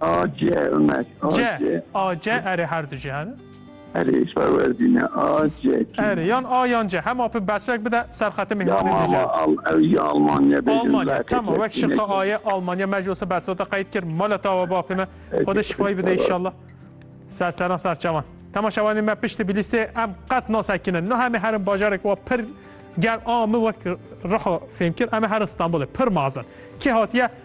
AC Ömer. AC. C. AC. Erê her du jî hene. Erê îş perwerdîne. AC. Kî? Erê yan A yan C. Hema pê bersek bide ser xetê Ya mîhmanê mama dîce. al ew ya Almanya bêjin. Almanya. Laqet Tamam wek yekîne şirka ki. aye Almanya me ji olsa bersota qeyd kir. Mala tawa bapê me. Xwedê şifayî bide inşallah. Ser seran ser çawan. Temaşevanê me pişt Tbilîsê em qet nasekinin. No hemê herin bajarek wa pir ger a min wek riho fêm kir em ê herin Stenbolê pir mazin. Kê hatiye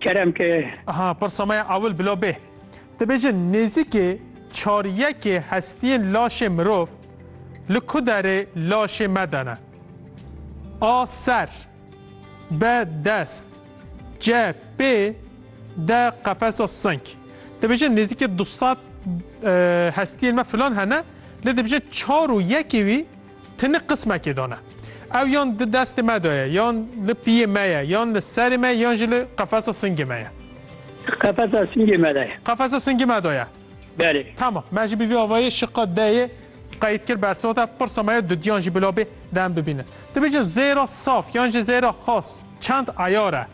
Kerem ke. Aha pirsa me ya ewil bila bê. Dibêje nêzîkê çar yekê hestiyên laşê mirov li ku derê laşê me de ne? A ser, B dest, C pê, D qefesa sink. Dibêje nêzîkê du sed hestiyên me filan hene lê dibêje çar û yekê wî Tinik qismekê dane. Ew yan di destê me de ye, yan li piyê me ye, yan li serê me yan jî li qefesa singê me ye. Qefesa singê me de ye. Qefesa singê me de ye. Belê. Tamam. Me jî bi vî avayî şiqa deyê qeyd kir bersivata pirsa me ya dudiyan jî bila bê dem bibînin. Dibêjin zêra saf yan jî zêra xas çend eyar e?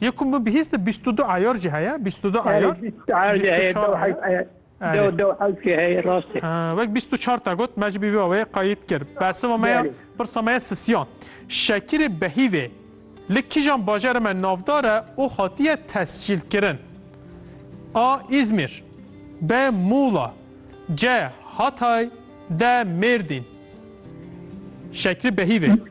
Yê ku min bihîst bîst û du ayar jî heye, bîst û du ayar. Bîst û çar jî heye, dew hewş heye. Dew dew hewş jî heye, rast e. Wek bîst û çar te got, me jî bî vê awayê qayît kir. Bersiva me ya, pirsa me ya sisiyan. Şekîrê Behîvê li kîjan bajarê me navdar e û hatiye tescîlkirin? A. Îzmîr B. Mûla C. Hatay D. Mêrdîn Şekîrê Behîvê.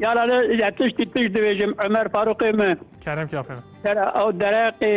Yara li ya tiştî tişt dibêjim Ömer Farûqê min. Kerem Kafê min. Kera ew dereqê.